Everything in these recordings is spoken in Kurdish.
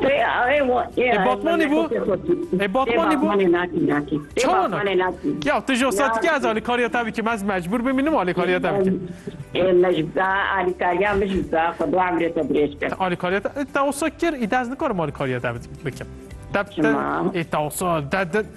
Ê Batmanê bû? Ê Batmanê bû? Çawa nakî? Ya tu ji satikê ez alîkariya te bikîm ez mecbûr bim min alîkariya te bikîm. Ê mecbûr alîkariya min ji za xwe du emrê te dirêj kir. Alîkariya te te wisa kir î de ez nikarim alîkariya te bikim. Te te ê te wisa te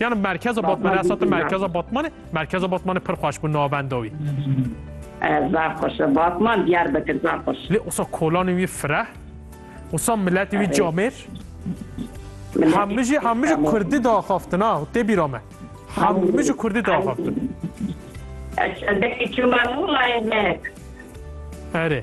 Yani merkeza Batman esatı merkeza Batman merkeza Batman pir xwaş bu navendawi. Zar xwaş Batman diyar bekir zar xwaş. Lê osa kolanê wî fireh osa milletê wî camêr hemû jî hemû jî kurdî daxaftin ha tê bîra me. Hemû jî kurdî daxaftin. Çendekî çûma nûlayê me. Erê.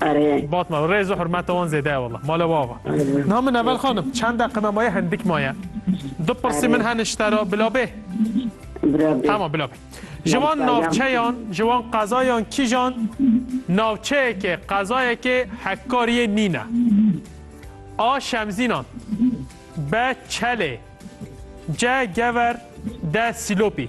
Arê. Batman rêz û hurmeta wan zêde ye wela. Ma li wa va. Niha min evel xanim çend deqina maye hindik maye. Du pirsî min hene ji te re bila bê? Bila bê. Tamam bila bê. Ji wan navçeyan, ji wan qezayan kîjan navçeyekê, qezayekê hevkariyê nîne? A. Şemzînan B. Çelê C. Gever D. Sîlopî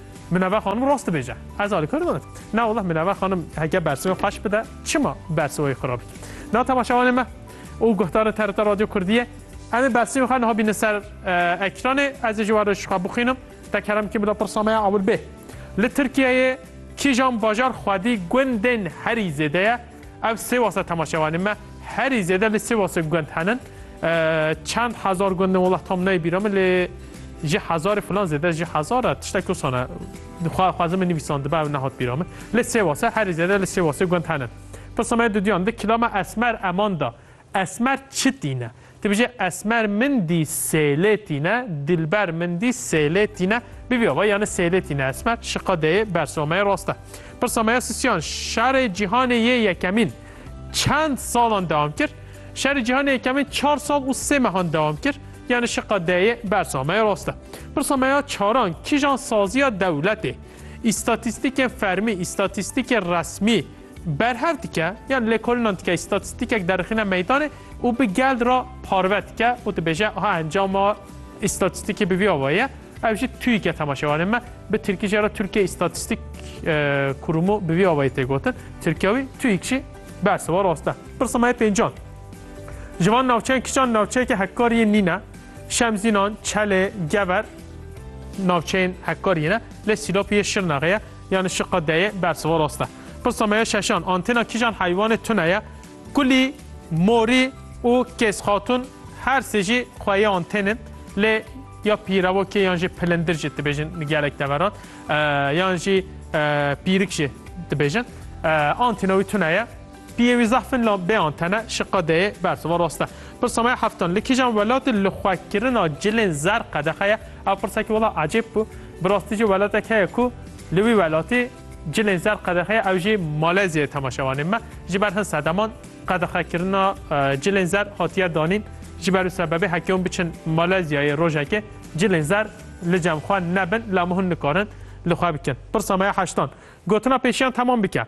Minever xanim rast dibêje. Ez alî kar nadim. Na wallah Minever xanim heke bersivê xwe ji bide çima bersivayê xwe rabît. Na temaşevanê me û guhdarê TRT Radyo Kurdiyê em ê bersivê xwe niha bînin ser eh, ekranê ez ê ji we re ji xwe bixwînim. Te kerem kî bila pirsa me ya ewil bê. Li Tirkiyeyê kîjan bajar xwedî gundên herî zêde ye? Ev sêwasa temaşevanê me herî zêde li sêwasê gund henin. Çend hezar gundin wala tam neyê bîra min lê ji hezarê filan zêde ji hezara tiştek kusana xwazim min nivîsandibe ew nehat bîra min. Lê sêwasa herî zêde li sêwasê gund henin. Pisame dudiyan di kilama esmer eman da. Esmer çi tîne? Ti bijî Esmer min dî sêlê tîne, Dilber min dî sêlê tîne. Bivî ava yanî sêlê tîne Esmer. Şiqa deyê bersa me rast e. Pirsa me ya Sisyan, Şerê Cîhanê yê Yekemîn çend salan dewam kir? Şerê Cîhanê Yekemîn çar sal û sê mehan dewam kir. Yanî şiqa deyê bersa me rast e. Pirsa me ya Çaran, Kîjan saziya dewletê, îstatîstîkên fermî, îstatîstîkên resmî, Berhev dike yan lêkolinan dike îstatîstîkek derixîne meydanê û bi gel re parve dike û dibêje ha encama îstatîstîkê bi vî ava ye. Ev jî TÜİK'e temaşevanê me bi tirkî jî re Tirkiye Îstatîstîk Kurûmu bi vî avayî tê gotin. Tirkiye wî TÜİK jî berse wa rast e. Pirsa me yê pêncan. Ji van navçeyan kişan navçeyeke hevkar yên nîn e. Şemzînan, Çelê, Gever navçeyên hevkar yên e. Lê Sîlopî yê Şirnexê ye. Yanî şiqa deyê bersiva rast e. Pirsa me ya şeşan, antêna kîjan heywanê tune ye? Kulî, morî û kêzxatûn her sê jî xwe yê antên in. Lê ya pîrevokê yan jî pilindir jî dibêjin gelek deveran. Yan jî pîrik jî dibêjin. Antêna wî tune ye. Piyê wî zehf in la bêan tene şiqa deyê bersiva rast e. Pirsa me ya heftan li kîjan welatê lixwekirina cilên zer qedexe ye? Ev pirsekî wela ecêb bû. Bi rastî jî welatek heye ku li wî welatî cilên zer qedexe ye ew jî Malezyayê temaşevanên me ji ber hin sedeman qedexekirina cilên zer hatiye danîn. Ji ber û sebebê heke hûn biçin Malezyayê rojekê cilên zer li cem xwe nebin lê hemû hûn nikarin li xwe bikin. Pirsa me ya heştan gotina pêşiyan temam bike.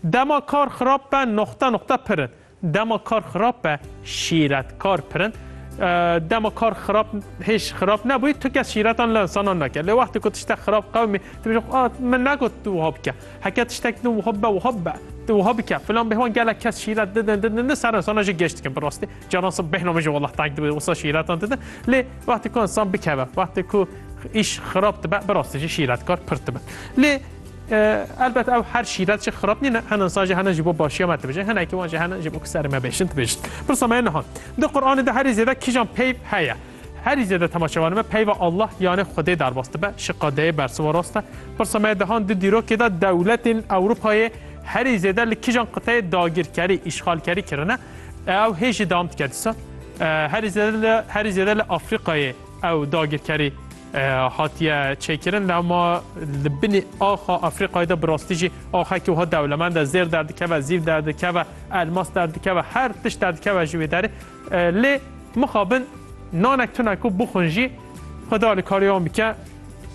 Dema kar xirab be noxte noxte pir in. Dema kar xirab be şîretkar pir in. Dema kar xirab hêj xirab nebûyî tu kes şîretan li insanan neke. Lê wextê ku tiştek xirab qewimî tu bêjî a min negot tu wiha bike. Heke tiştek din wiha bibe wiha bibe. Tu wiha bike filan bêhwan gelek kes şîret didin didin didin ser insana jî geş dikin bi rastî. Caran sib bêhna min jî wela teng dibe wisa şîretan didin. Lê wextê ku insan bikeve wextê ku îş xirab dibe bi rastî jî şîretkar pir dibe. Lê Elbet ew her şîret jî xirab nîn e. Hin insan jî hene ji bo başiya me dibêjin, hinekî wan jî hene ji bo ku serê me bêjin dibêjin. Pirsa me niha, di Quranê de herî zêde kîjan peyv heye? Herî zêde tema çevanê me peyva Allah yanê Xwedê derbas dibe, şiqadeyê bersiva rast e. Pirsa me dihan di dîrokê de dewletên Ewropayê herî zêde li kîjan qiteyê dagirkerî, îşxalkerî kirine? Ew hê jî dewam dike dîsa. Herî zêde li herî zêde li Afrîkayê ew dagirkerî Hatiye çêkirin lema li binê axa Efrîqayê de bi rastî jî axekî wiha dewlemend e. Zêr derdikeve, zîv derdikeve, elmas derdikeve, her tişt derdikeve ji wê derê. Lê mixabin nanek tune ku bixwin jî xwe di alîkarê wan bike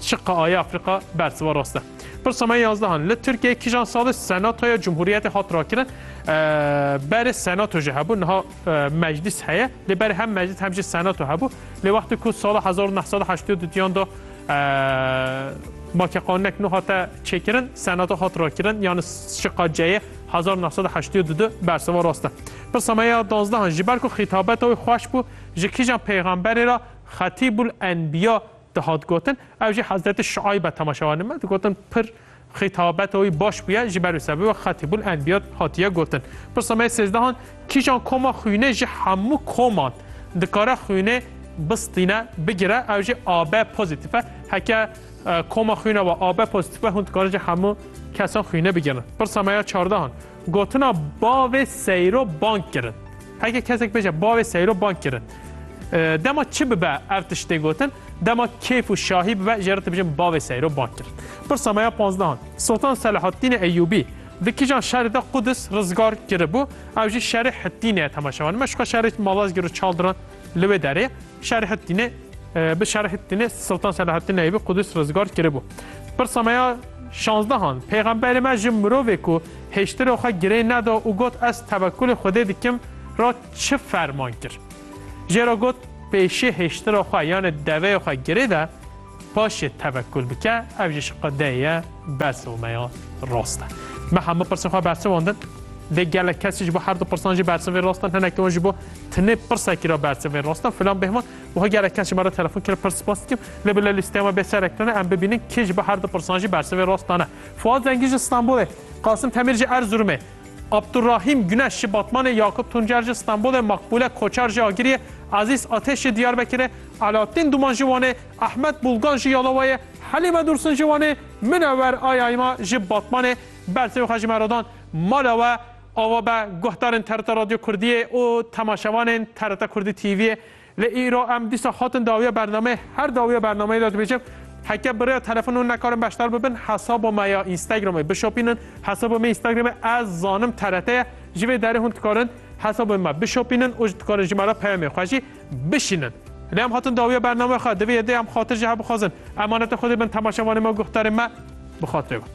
çi qeayê Efrîqa bersiva rast e. Pirsa me yazdehan li Tirkiyeyê kîjan salê senatoya Cumhuriyetê hat rakirin berê senato jî hebû niha Meclîs heye lê berê hem meclîs hem jî senato hebû lê wextê ku sala hezar û neh sed û heştê û du diyan da make qanunek nû hate çêkirin senato hat rakirin yani şiqa ceyê hezar û neh sed û heştê û du du berseva rast e. Pirsa me ya danzdehan ji ber ku xîtabeta wê xweş bû ji kîjan peyxamberê ra xetîbul enbiya dihat gotin ew jî hezretî şuayb e temaşewanê me digotin pir Xîtabeta wî baş bûye ji ber wî sebê wek Xatîbul Enbiyad hatiye gotin. Pirsa me yê sêzdehan, Kîjan koma xwînê ji hemû koman dikare xwînê bistîne, bigire ew jî AB pozîtîf e? Heke koma xwîna we AB pozîtîf be hûn dikarin ji hemû kesan xwînê bigirin. Pirsa me ya çardehan, Gotina bavê seyro bang kirin. Heke kesek bêje bavê seyro bang kirin. Dema çi bibe ev tiştê gotin, dema kêf û şahî bibe jê re dibijin bavê seyro bang kirin. Pirsa me ya panzdehan. Sultan Selahaddînê Eyyûbî di kîjan şerê de Qudis rizgar kiribû, ew jî şerê Hittînê ye temaşe wan. Me şixwe şerê Malazgîr û Çaldiran li wê derê ye. Şerhettîne bi Şerhettîne Siltan Şerhettîne bi Qudus rizgar kiribû. Pirsa me ya şanzdehan Pêxemberê me ji mirovê ku hêştirê xwe girê neda û got ez tevekulê Xwedê dikim re çi ferman kir? Jê re got pêşê hêştira xwe yanê deveyê xwe girê de Paşê tevekul bike ev jî şiqe dê ye bersiv me ya rast e. Me hemû pirsên xwe bersivandin. Dê gelek kesî ji bo herdu pirsan jî bersivên rast in. Hinekî wan ji bo tenê pirsekî re bersivên rast in. Filan bêhman wiha gelek kes ji me re telefon kir pir spas dikim. Lê bila lîsteya me bê serek tune em bibînin kê ji bo herdu pirsan jî bersivên rast dane. Fuat Zengî ji Stenbolê, Qasim Temîr ji Erzurumê, Abdurrahîm Guneş ji Batmanê, Yakup Tuncer ji Stenbolê, Makbule Koçar ji Agiriyê, Ezîz Ateş ji Diyarbekirê, Alaattîn Duman ji Wanê, Ehmed Bulgan ji Yalawayê, Helîme Dursun ji Wanê, Minewer Ayayma ji Batmanê, bersê xwe ji me re dan. Mala we ava be guhdarên TRT Radyo Kurdiyê û temaşevanên TRT Kurdî TV'yê. Lê îro em dîsa hatin dawiya bernameyê, her dawiya bernameyê de dibêjim, Heke bi rêya telefon hûn nekarin beşdar bibin, hesaba me ya Instagramê bişopînin, hesaba me ya Instagramê ez zanim TRT ye, ji vê derê hûn dikarin hesaba me bişopînin û dikarin ji me re peyamên xwe jî. Bişînin. Lê em hatin dawiya bername xwe, divê yê dê em xatir ji hev bixwazin. Emaneta Xwedê bin, temaşevanê me û guhdarên me bi xatirê wan.